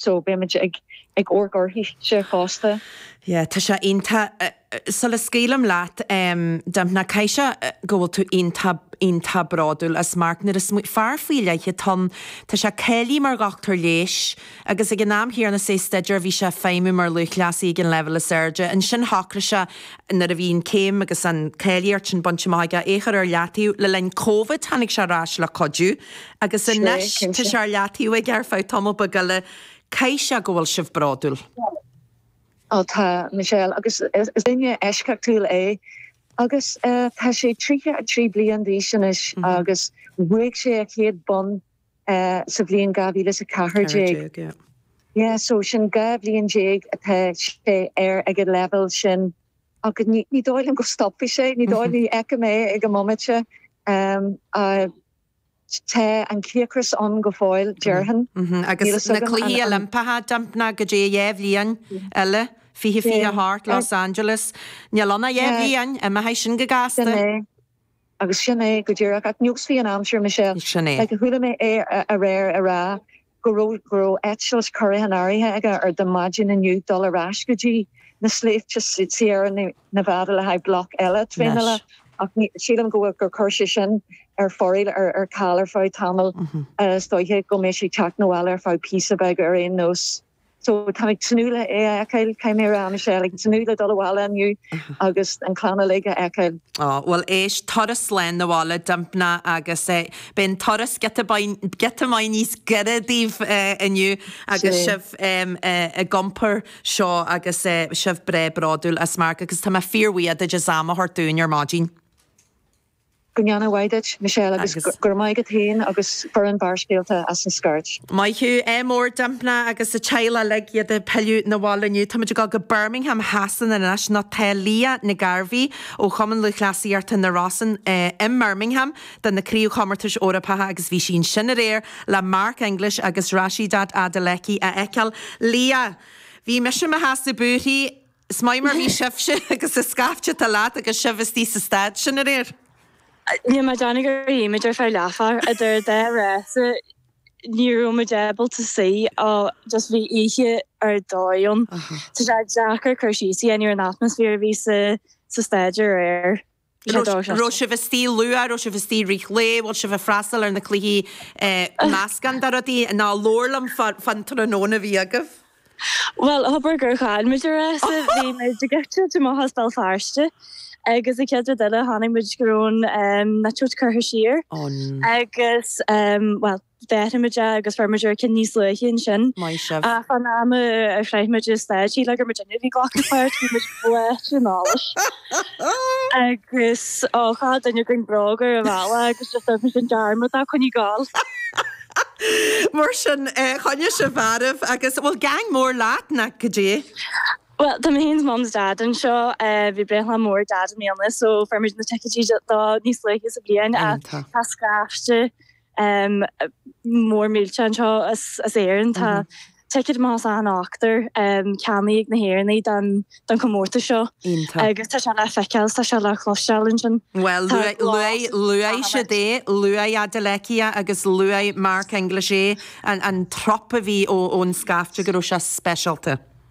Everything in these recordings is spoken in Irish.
so beidh muid ag ag amharc uirthise fosta. Yeah tá sé iontach sula scaoilim leat em Dympna caithfidh sé go bhfuil tú iontach iontach bródúil as Mark nó is fear faoi leith atá ann tá sé cáilithe mar dhochtúir leighis agus ag an am chéanna is é ag staidéar bhí sé ag feidhmiú mar lúthchleasaí ag an leibhéal is airde ansin shocraigh sé nuair a bhí an céim agus an cáilíocht sin bainte amach aige é a chur ar leataobh le linn Covid tháinig sé ar ais le cuidiú Agus anois, tá sé ar leataobh aige ar feadh tamall beag eile. Caithfidh sé go bhfuil sibh bródúil. Ó tá, Michelle, agus is duine eisceachtúil é. Agus tá sé 33 bliain d'aois anois agus bhuaigh sé a chéad bonn sa bhliain 2014. So sin dhá bhliain déag atá sé air ag an leibhéal sin. Ach ní dóigh liom go stopfaidh sé, ní dóigh, ní fheicim é ag an mbomaite. Tá an cíocras ann go fóill, déarfainn. Agus na Cluichí Oilimpeacha, Dympna, go dtí dhá bhliain eile, fiche fiche a hocht, Los Angeles. Níl ann ach dhá bhliain, imeoidh sin go gasta. Sin é, agus sin é go díreach. Ach neosfaidh an aimsir, Michelle. Sin é. Chuala mé é aréir ag rá. go raibh eitilt curtha in áirithe aige ar do maidin inniu dul ar ais go dtí na sléibhte Sierra Nevada le haghaidh bloc eile traenála ach sílim go bhfuil gur chuir sé sin ar foraíl ar ar ceal ar feadh tamall is dóiche go mbeidh sé teacht 'na bhaile ar feadh píosa beag ar aon nós. So tá muid ag tnúth le é a fheiceáil, caithfidh mé a rá Michelle, ag tnúth le dul abhaile inniu agus an clann uilig a fheiceáil. Ó, bhuel éist, turas slán abhaile Dympna agus beidh an turas giota beag, giota maith níos gaire daoibh inniu agus Sin é. sibh ag iompar seo agus sibh breá bródúil as Mark agus tá mé fíorbhuíoch duid as am a thabhairt dúinn ar maidin. Go ndéana a mhaith duit, Michelle, agus go raibh maith agat féin agus foireann Bharrscéalta as an scairt. Maith thú, ádh mór Dympna agus a teaghlach uilig, iad ag pilleadh 'na bhaile inniu. Táimid ag dul go Birmingham Shasana anois. Nó tá Leah Nic Gairbheith ó Chumann Lúthchleasaíochta na Rosann i mBirmingham do na Craobhchomórtais Eorpacha agus bhí sí ansin aréir le Mark English agus Rhasidat Adeleke a fheiceáil. Leah, Bhí mise i mo sheasamh ag búirthí. Is maith mar bhí sibhse agus an scaifte atá leat agus sibh istigh sa staid sin aréir. Níl mé ag déanamh gur shuigh muid ar feadh leathuair, idir dhá rása ní raibh muid ábalta suí ach just bhí oíche ar dóigh ann. Tá sé deacair cur síos a dhéanamh ar an atmaisféar a bhí sa staid aréir. raibh sibh istigh luath, raibh sibh istigh i rith an lae, bhfuil sibh ag freastal ar na cluichí, meascán de rudaí, nó labhair liom fán tráthnóna a bhí agaibh. Bhuel, thobair gur chaill muid an rása, bhí muid ag eitilt amach as Béal Feirste agus an chéad rud eile chonaic muid go raibh an eitilt curtha siar agus bhuel, fuair muid é agus fuair muid ár gcinn níos luaithe ansin. Maith sibh. Ach an am a shroich muid an staid, níl agam duine a bhí glacadh le páirt, bhí muid báite in allas. Agus ó, chaith duine againn bróga ar bhalla agus just dhoirtfimid an dearmad dá coinní gal. Mar sin, choinnigh sibh mharbh agus, bhfuil gean mór leat, nach go dtí? Bhuel, tá mé féin 's Mum 's Dad anseo, bhí breithlá mór Dad i mbliana so fuair muid na ticéidí dó níos luaithe sa bhliain ach tá scaifte, mór millte anseo as Éirinn. Tá ticéad amach as achan ochtar ceannaithe ag na hÉireannaigh don chomórtas seo, agus tá sé le feiceáil, tá sé le cloisteáil ansin. Bhuel, luaigh siad é, luaigh Adeleke agus luaigh Mark English é, an trup a bhí ón scaifte go raibh sé speisialta.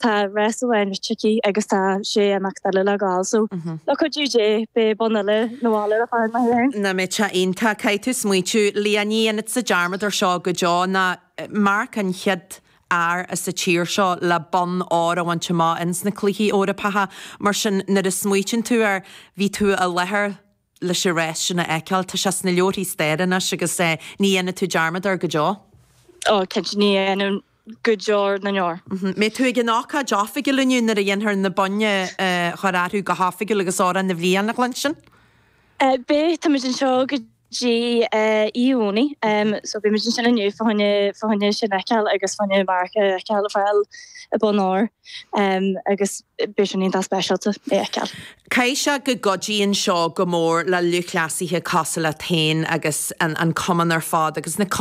Tá rása amháin rite aici agus tá sé imeacht eile le gabháil so le cuidiú Dé beidh bonn eile ag gabháil ar an charn maith í féin. Nach mbeadh sé iontach. Caithfidh tú smaoitiú Leanaí ní dhéanfaidh tusa dearmad ar seo go deo ná Mark an chéad fhear as an tír seo le bonn óir a bhaint amach ins na cluichí Eorpacha mar sin nuair a smaoitíonn tú air bhí tú i láthair leis an rás sin a fheiceáil. Tá sé sna leabharthaí staire anois agus ní dhéanfaidh tú dearmad air go deo. Ó, cinnte, ní dhéanfainn go deo na ndeor. An mbeidh tú ag an ócáid oifigiúil inniu nuair a dhéanfar na boinn a chur orthu go hoifigiúil agus Amhrán na bhFiann a chluinstin? Beidh, táimid anseo go dtí Dé Domhnaigh so beimid ansin inniu fá choinne sin a fheiceáil agus fá choinne Mark a fheiceáil ag fáil an bonn óir agus beidh sin iontach speisialta é a fheiceáil. Caithfidh sé go gcuidíonn seo go mór le lúthchleasaithe cosúil leat féin agus an cumann ar fad agus na.